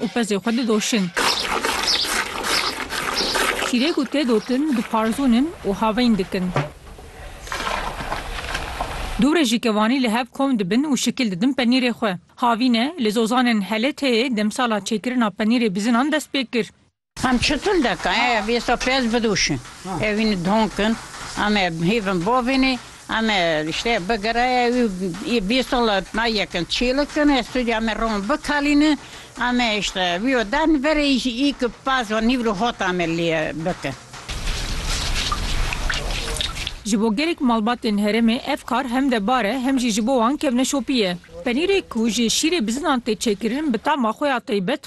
Û pezê xwe didoşin. Şîrê ku tê dotin diparzûnin û havîn dikin. Du rejîkevanî li hev kom dibin û şikil didin penîrê xwe. Havîne, li Zozanên Heleteyê demsala çêkirina penîrê bizinan dest pê kir. Em çitul deka em ê êsta pez bidûşin ê wî nidhon kin em ê hêvin bavênê em ê îştê bigire ê wî ê bîst sal e na yekin çîlik kin ê stûdî em ê ron bikalînin em ê îştê wî û der nivere î jî î ki pez û nîv li hota em ê lê bikin. Ji bo gelek malbatên herêmê ev kar hem de bar e hem jî ji bo wan kevneşopî ye. Penîrê ku ji şîrê bizinan tê çêkirin bi tama xwe ya taybet,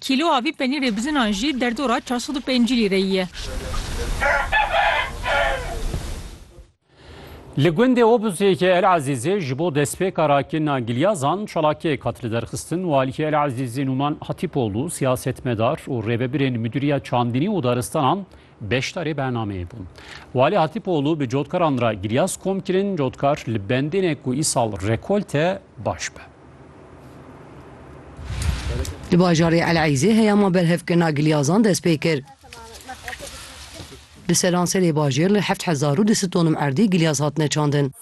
Kîloa vî penîrê bizinan jî derdora çar sed û pêncî lîreyî ye. Li gundê Obuzêkê El Ezîzê ji bo destpêka rakirina gilyazan çalakiyek hat liderxistin û aliyê El Ezîzê Nûman Hatîpoglu, siyasetmedar û rêvebirên Midûriya Çandinî û Daristanan Beşdarê bernameyê bûn. Walî Hatîpoglû bi cotkaran re giryas kom kirin cotkar li bendê ne ku îsal rekolte baş be. Li bajarê El Eîzê heyama berhevkirina gilyazan dest pê kir. Di seranserê bajêr li heft hezar û du sed tonum erdî gilyaz hatine çandin.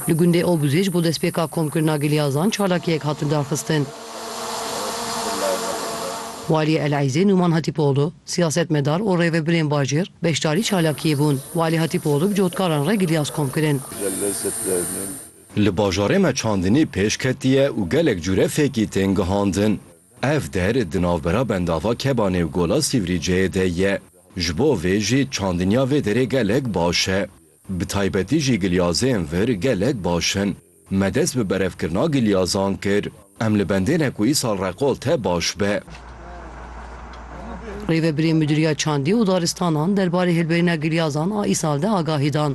Li gundê Obuzê ji bo destpêka komkirina gilyazan çalakiyek hatin daxistin. Waliyê Elezê Numan Hatîpoğlu, siyasetmedar û rêvebirên bajêr beşdarî çalakiyê bûn. Walî Hatîpoğlu bi cotkaran re gilyaz kom kirin. Li bajarê me çandinî pêş ketiye û gelek cure fêkî tên gihandin. Ev der di navbera bendava Kebanê û Gola Sîvrîceyê de ye. Ji bo vê jî çandinya vê derê gelek baş e. Bi taybetî jî gilyazên vir gelek baş in. Me dest bi berevkirina gilyazan kir. Em li bendê ne ku îsal reqolte baş be. Rêvebirê Midûriya Çandî û Daristanan derbarê hilberîna gilyazan a îsal de agahî dan.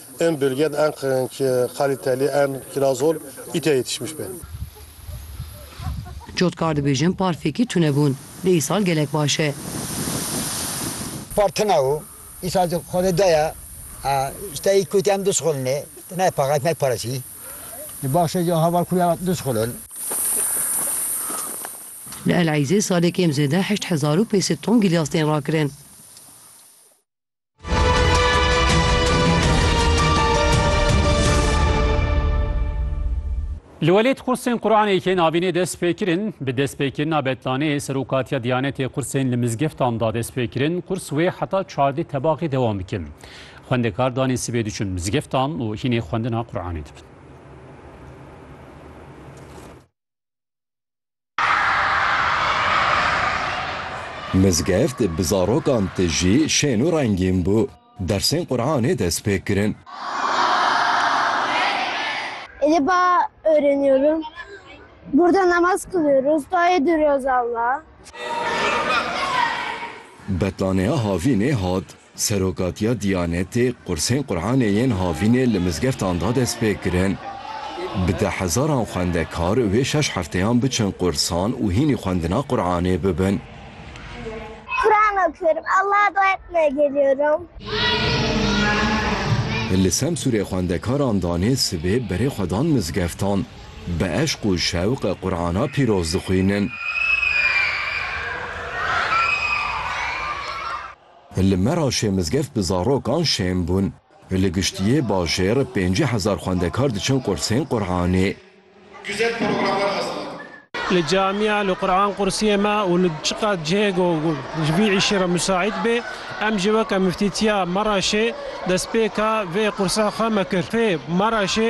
En bölged en kaliteli en kirazol îte yetişmiş be. Cotkar dibêjin par fêkî tune bûn. Dê îsal gelek baş e. Par tune û îsal jî xwe dê daye. Ji tayî kotî em dişixulin ê. Ti ne paqij ne pareçî. Di baxşê jî heval kû ya dişixulin. Li El Eîzê salê kêm zêde heşt hezar û pêz sed ton gîlyas tên rakirin. Li welêt qursên Quranê yên avînê dest pê kirin, bi destpêkirina betlaneyê Serokatiya Diyanetê qursên li mizgeftan da dest pê kirin, qurs wê heta çardê tebaxê dewam bikin. Xwendekar danê sibê diçin mizgeftan û hînê xwendina Quranê dibin. Mizgeft bi zarokan tijî şên û rengîn bû. Dersên Quranê dest pê kirin. Êdî ba öğreniyorum. Burada namaz kılıyoruz. Dua ediyoruz Allah'a. Betlanea Havînê hat. Serokatiya Diyanetê qursên Quranê yên havînê li mizgeftan da destpêkirin. Bi deh hezaran xwendekar vê şeş hefteyan biçin qursan û hînî xwendina Quranê bibin. Quran okuyorum. Allah'a dua etmeye geliyorum. Li Semsûrê xwendekaran danê sibê berê xwe dan mizgeftan. Bi eşq û şewq Qurana pîroz dixwînin. Li Meraşê mizgev bi zarokan şên bûn. Li giştiyê bajêr pêncî hezar xwendekar diçin qursên Quranê. Güzel programlar hazırladın. Li camiya, li Qur'an qursiyê me û li çi qas cihê ku ji vî îşê re musaîd bê, em jî weke Miftîtiya Meraşê destpêka vê qursa xwe me kir. Fê Meraşê.